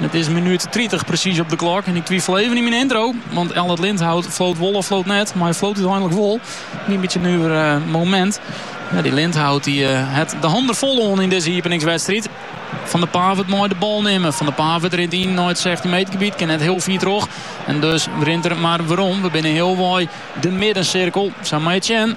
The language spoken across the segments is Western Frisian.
It is minút tritich presys op de klok en ik twifel even yn myn intro. Want Allard Lindhout floot wol of floot net, mar hy floot úteinlik wol. In bytsje in nuver eh, momint. Ja, dy Lindhout dy eh, hat de hannen fol oan yn dizze iepeningswedstriid. Van de Pavert mei de bal nimme. Van de Pavert rint yn nei it 16 meter gebiet. Kin net hiel fier troch. En dus rint er mar werom. We binne healwei de middensirkel. Sa mei Chen.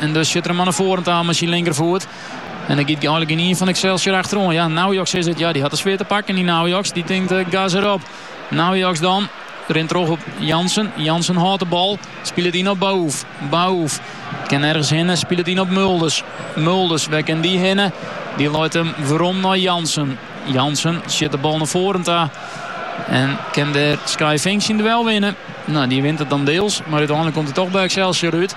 En dus sjut er him al nei foaren ta mei syn linkerfoet. En der giet einlik gjinien fan Excelsior achteroan. Ja, Naujoks is it. Ja, dy hat de sfear te pakken, dy Naujoks. Dy tinkt eh, gas erop. Naujoks dan. Rint troch op Jansen. Jansen hâldt de bal. Spilet yn op Baouf. Baouf kin nergens hinne. Spilet yn op Mulders. Mulders, wêr kin dy hinne? Dy leit hem werom nei Jansen. Jansen sjut de bal nei foaren ta. En kin dêr Skye Vink syn duel winne. No, dy wint it dan diels. Mar úteinlik komt hy toch by Excelsior út.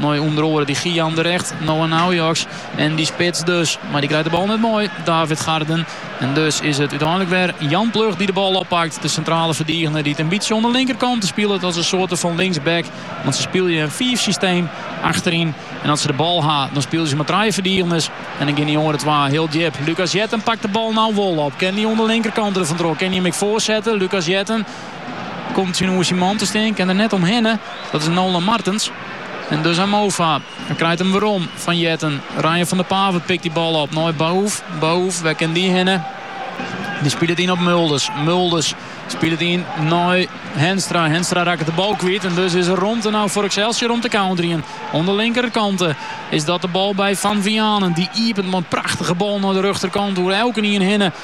Mei ûnder oaren dy Gyan de Regt, Noah Naujoks en dy spits dus. Mar dy krijt de bal net mei, David Garden. En dus is it úteinlik wer Jan Plug dy't de bal oppakt. De sintrale ferdigener dy't in bytsje oan de linkerkant spilet as in soarte fan linksback. Want se spylje in fiifsysteem achteryn. En as se de bal ha, dan spylje se mei trije ferdigeners. En dan gean dy oare twa hiel djip. Lucas Jetten pakt de bal no wol op. Kin dy oan de linkerkant der fantroch? Kin dy him ek foarsette? Lucas Jetten. Komt tsjin oer syn man te stean, kin der net omhinne. Dat is Nolan Martens. En dus aan Mova. Hij krijgt hem werom van Jetten. Ryan van der Pavert pikt die bal op. Nooi Bahoef. Bahoef, waar kan die hinnen? Die speelt het in op Mulders. Mulders speelt het in naar Henstra. Henstra raakt de bal kwijt. En dus is er romte nou voor Excelsior om te counteren. Aan de linkerkant eh, is dat de bal bij Van Vianen. Die iepent met een prachtige bal naar de rechterkant. Hoe elke hinnen.